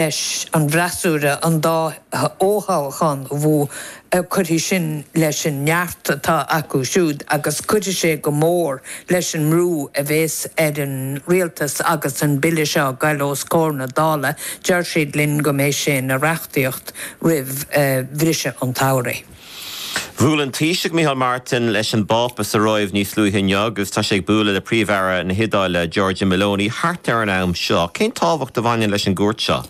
leis an bhfreasúra an dá fho-thoghachán a bhuachan, cuirfidh sin leis an neart atá acu siúd agus cuirfidh sé go mór leis an mbrú a bheas ar an rialtas agus an bille seo a ghoil os comhair na Dála, deir siad linn go mbeidh sé ina reachtaíocht roimh bhriseadh an tsamhraidh. Bhuail an Taoiseach Micheál Martin leis an bPápa sa Róimh níos luaithe inniu agus tá sé ag bualadh le Príomh-Aire na hIodáile, Giorgia Meloni, thart ar an am seo. Cén tábhacht a bhaineann leis an gcuairt seo?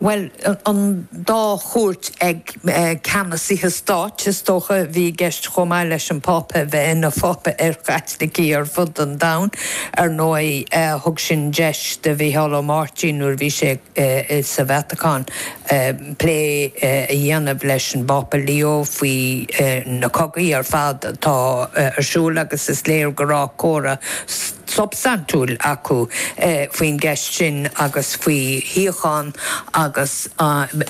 Bhuel, an dá chuairt ag ceannasaithe stáit, is dócha, a bhí i gceist chomh maith leis an bPápa a bheith ina Phápa ar Chaitlicigh ar fud an domhain. Ar ndóigh, thug sin deis do Mhicheál Ó Máirtín nuair a bhí sé sa Vatacáin. plé a dhéanamh leis an bPápa Leo faoi na cogaí ar fad atá ar siúl agus is léir go raibh comhrá substaintiúil acu faoin gceist sin agus faoi shíocháin agus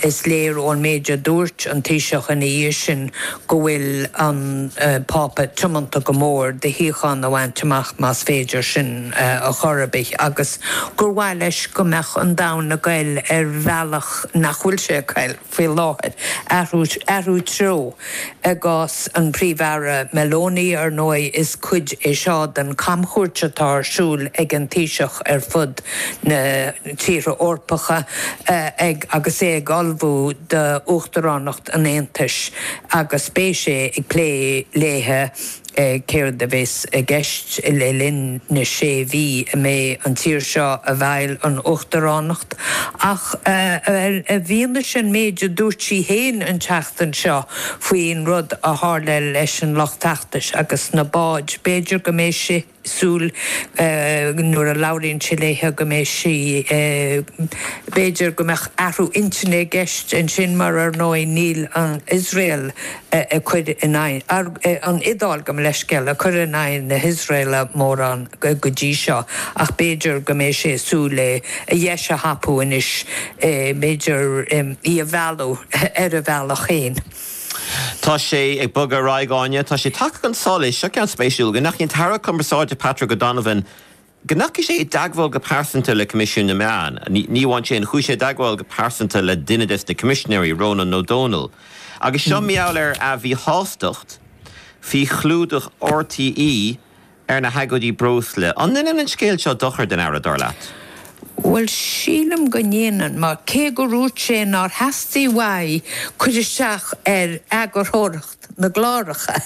is léir ón méid a dúirt an Taoiseach ina dhiaidh sin go bhfuil an Pápa tiomanta go mór do shíocháin a bhaint amach más féidir sin a chor ar bith agus gur mhaith leis go mbeadh an domhan ag goil ar bhealach nach bhfuil sé ag goil faoi láthair, athrú treo. I gcás an Phríomh-Aire Meloni, ar ndóigh, is cuid é seo den chamchuairt atá ar siúl ag an Taoiseach ar fud na tíortha Eorpacha agus é ag ullmhú d'uachtaránacht an Aontais agus beidh sé ag plé léithe céard a bheas i gceist le linn na sé mhí a mbeidh an tír seo i bhfeighil an Uachtaránacht ach i bhfianaise an méid a dúirt sí féin an tseachtain seo faoin rud a tharla leis an lucht feachtais agus na báid, b'fhéidir go mbeidh sé. súil nuair a labhraíonn sé léithe go mbeidh sí. B'fhéidir go mbeadh athrú intinne i gceist ansin mar ar ndóigh níl an Iosrael ag cur in aghaidh, an Iodáil, gabh mo leithscéal, ag cur in aghaidh na hIosraeile mórán go dtí seo ach b'fhéidir go mbeidh sé súil é a dheis a thapú anois, b'fhéidir í a mhealladh ar a bhealach féin. Tá sé ag bogadh ar aghaidh, Áine. Tá sé tagtha chun solais, seo ceann spéisiúil, go ndeachaigh an tAire Cumarsáide Patrick O'Donovan, go ndeachaigh sé i dteagmháil go pearsanta le Coimisiún na Meán. Ní amháin sin, chuaigh sé i dteagmháil go pearsanta le duine des na Coimisinéirí, Rónán Ó Domhnaill. Agus seo mar gheall ar a mhíshástacht faoi chlúdach RTÉ. ar na hagóidí breosla. An ndéanann an scéal seo dochar den Aire, dar leat? Bhuel, sílim go ndéanann, mar cé go ndúirt sé nár theastaigh uaidh cur isteach ar eagarthóireacht na gcláracha,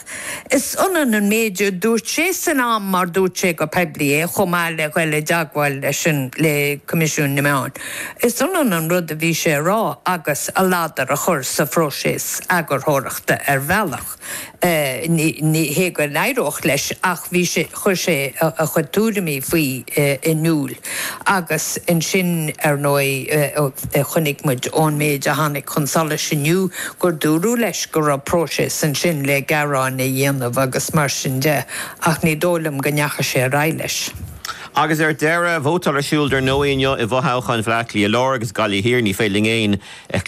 is ionann an méid a dúirt sé san am mar dúirt sé go poiblí é chomh maith le ghoil i dteagmháil leis an le Coimisiún na Meán. Is ionann an rud a bhí sé a rá agus a ladar a chur sa phróiseas eagarthóireachta ar bhealach. Ní hé go n-éireodh leis ach bhí sé, chuir sé a chuid tuairimí faoi in iúl agus ansin, ar ndóigh, chonaic muid ón méid a tháinig chun solais inniu gur dúradh leis go raibh próiseas ansin le gearán a dhéanamh agus mar sin de ach ní dóigh liom go ndeachaigh sé ar aghaidh leis. Agus ar deireadh, vótáil ar siúl ar ndóigh inniu i bhfothoghcháin Bhleá Cliath Láir agus Gaillimh Thiar, ní féidir linn aon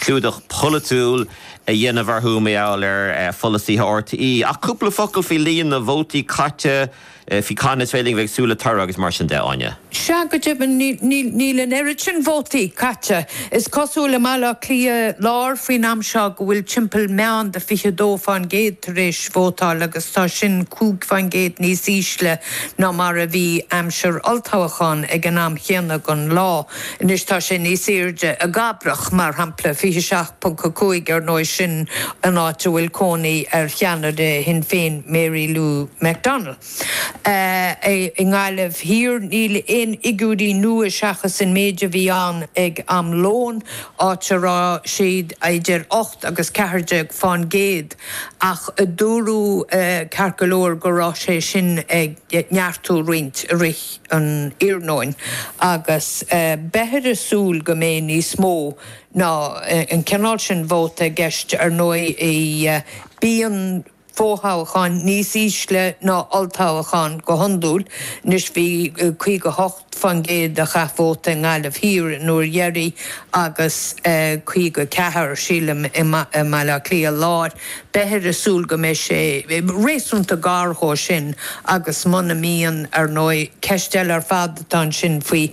chlúdach polaitiúil, a dhéanamh orthu mar gheall ar pholasaithe RTÉ. Ach cúpla focal faoi líon na vótaí caite, faoi cathain is féidir a bheith ag súil le toradh agus mar sin de, Áine? Sea, go deimhin, níl an oiread sin vótaí caite, is cosúil, i mBaile Átha Cliath Láir faoin am seo go bhfuil timpeall meán de 22 fán gcéad tar éis vótáil agus tá sin cúig fán gcéad níos ísle ná mar a bhí aimsir olltoghcháin ag an am chéanna den lá. Anois tá sé níos airde i gCabrach, mar shampla, 27 .5 Ar ndóigh sin an áit a bhfuil cónaí ar cheannaire Shinn Féin, Mary Lou McDonald. I nGaillimh Thiar níl aon fhigiúirí nua seachas an méid a bhí ann ag am lóin, áit a raibh siad idir ocht agus ceathair déag fán gcéad, ach dúradh ceart go leor go raibh sé sin ag neartú roinnt i rith an iarnóin agus beifear ag súil go mbeidh níos mó ná an cineál sin vóta i gceist, ar ndóigh, bíonn fothoghcháin níos ísle ná olltoghcháin go hiondúil. Anois, bhí 58 fán gcéad a chaith vóta i nGaillimh Thiar an uair dheiridh agus 54, sílim, i mBaile Átha Cliath Láir. Beifear ag súil go mbeidh sé réasúnta gar dhó sin agus muna mbíonn, ar ndóigh, ceist eile ar fad atá ansin faoi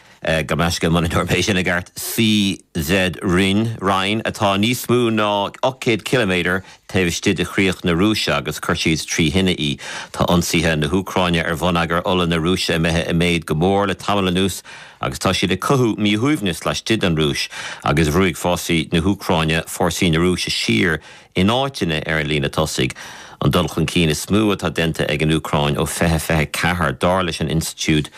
Go maise, mura ndéarfaidh mé é sin i gceart, Syzran, ran, atá níos mó ná 800 ciliméadar taobh istigh de chríoch na Rúise agus chuir siad trí thine í. Tá ionsaithe na hÚcráine ar bhonneagar ola na Rúise imithe i méad go mór le tamall anuas agus tá siad ag cothú míshuaimhneas laistigh den Rúis agus ruaig fórsaí na hÚcráine fórsaí na Rúise siar In áiteanna ar an líne tosaigh, an dul chun cinn is mó atá déanta ag an Úcráin ó 2024, dar leis an Institiúid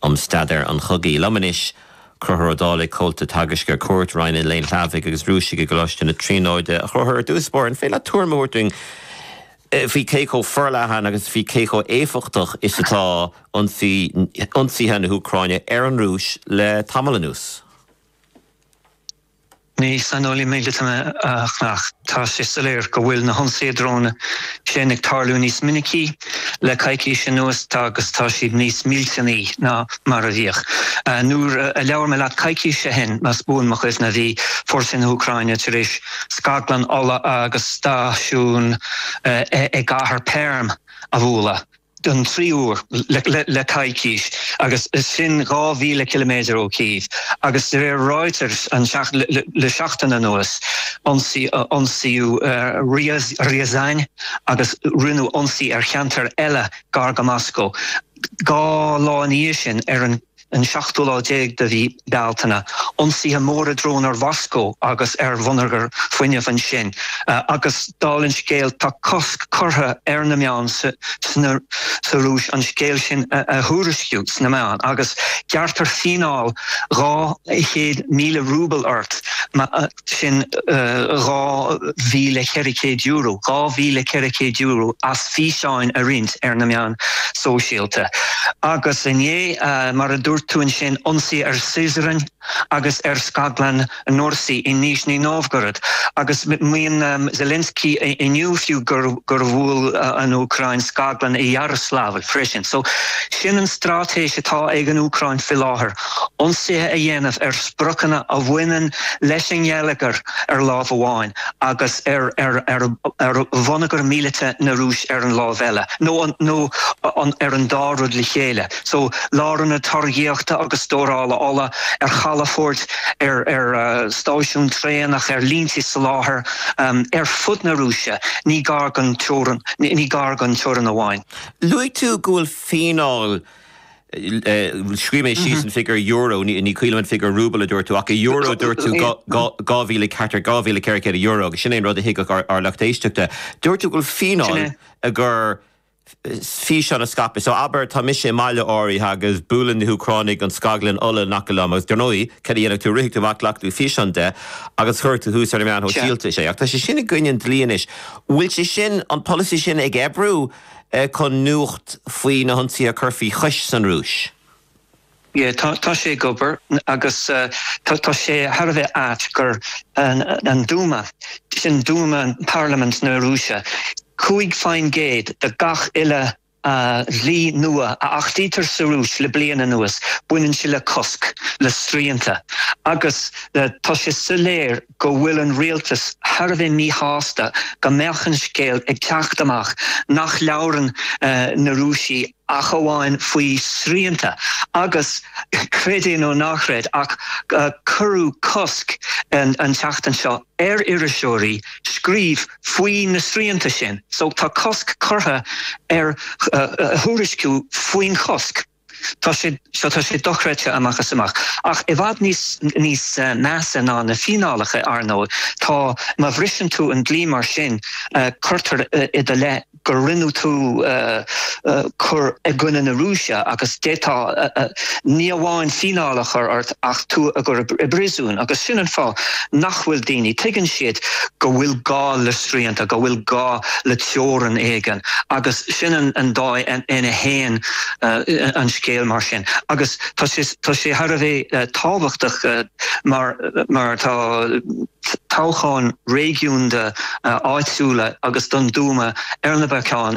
um Staidéar an Chogaidh. Liom anois, Conchúr Ó Dálaigh, Comhalta Teagaisc ar Cuairt Roinn an Léinn Shlavaigh agus Rúisigh i gColáiste na Tríonóide, a Chonchúir ar dtús báire. An féidir leat tuairim a thabhairt dúinn faoi cé chomh forleathan agus faoi cé chomh éifeachtach is atá ionsaithe na hÚcráine ar an Rúis le tamall anuas? Ní saineolaí míleata mé ach tá sé soiléir go bhfuil na hionsaithe dróine sin ag tarlú níos minicí le coicís anuas agus tá siad níos millteanaí ná mar a bhíodh. Nuair a labhair mé leat coicís ó shin, más buan mo chuimhne, bhí fórsaí na hÚcráine tar éis scaglann ola agus stáisiún i gcathair Perm a bhualadh. don tríú uair le coicís, agus sin dhá mhíle ciliméadar ó Kyiv, agus de réir Reuters le seachtain anuas, ionsaíodh Ryazan agus rinneadh ionsaí ar cheantair eile gar go Moscó dhá lá ina dhiaidh sin ar an seachtú lá déag de mhí Bealtaine, ionsaithe móra drón ar Mhoscó agus ar bhonneagar fuinnimh ansin, agus dála an scéil, tá cosc curtha ar na meáin sa Rúis an scéal sin a thuairisciú sna meáin, agus gearrtar fíneáil dhá chéad míle rúbal ort má. sin €2,400, dhá mhíle ceithre chéad euro, as físeáin a roinnt ar na meáin sóisialta. Agus inné, mar a dúirt tú ansin, ionsaí ar Syzran agus ar scaglann NORSI i Nizhny Novgorod, agus maíonn Zelensky inniu fiú gur bhuail an Úcráin scaglann i Yaroslavl freisin. So sin an straitéis atá ag an Úcráin faoi láthair. ionsaithe a dhéanamh ar spriocanna a bhaineann leis an ngeilleagar ar lámh amháin agus ar bhonneagar míleata na Rúise ar an lámh eile, nó ar an dá rud le chéile, so lárionad táirgíochta agus stórála ola, ar chalafoirt, ar stáisiúin traenach, ar línte soláthair ar fud na Rúise, ní gar don teora, ní gar don teorainn amháin. Luaigh tú go bhfuil fíneáil Scríobh mé síos an figiúr euro, ní cuimhin liom an figiúr rúbal a dúirt tú, ach i euro a dúirt tú, dhá mhíle ceathrar, dhá mhíle ceithre chéad euro, agus sin é an rud a thuigfeadh ár lucht éisteachta. Dúirt tú go bhfuil fíneáil i gcomhair físeán a scaipeadh. So, abair, tá mise i mbaile áirithe agus buaileann na hÚcránaigh an scaglann ola in aice liom, agus dar ndóigh, cad a dhéanfaidh tú? Rithfidh tú amach, glacfaidh tú físeán de agus cuirfidh tú thuas ar na meáin shóisialta é. Ach tá sé sin i gcoinne an dlí anois. An bhfuil sé sin, an polasaí sin ag oibriú? chun nuacht faoi na hionsaithe a chur faoi chois san Rúis. E, tá sé ag obair agus tá sé thar a bheith ait gur an Dúma, sin Dúma, Parlaimint na Rúise, cúig faoin gcéad de gach uile dhlí nua a achtaítear sa Rúis le bliain anuas, baineann sé le cosc, le srianta agus tá sé soiléir, go bhfuil an rialtas thar a bheith míshásta go mbeadh an scéal ag teacht amach nach labhrann na Rúisigh ach amháin faoi srianta agus, creid é nó ná chreid ach cuireadh cosc an tseachtain seo ar iriseoirí scríobh faoi na srianta sin. So tá cosc curtha ar thuairisciú faoin chosc. tá, tá sé dochreidte amach is amach. Ach i bhfad níos measa ná na fíneálacha, ar ndóigh, tá má bhriseann tú an dlí mar sin, cuirtear i do leith go ndearna tú cur i gcoinne na Rúise agus d'fhéadfaí ní amháin fíneáil a chur ort ach tú a chur i bpríosún. Agus sin an fáth nach bhfuil daoine, tuigeann siad go bhfuil gá le srianta, go bhfuil gá le teorainn éigin agus sin an dóigh ina bhfuil, an scéal mar sin agus tá, tá sé thar a bheith tábhachtach mar tá toghcháin réigiúnda, áitiúla agus don Dúma ar na bacáin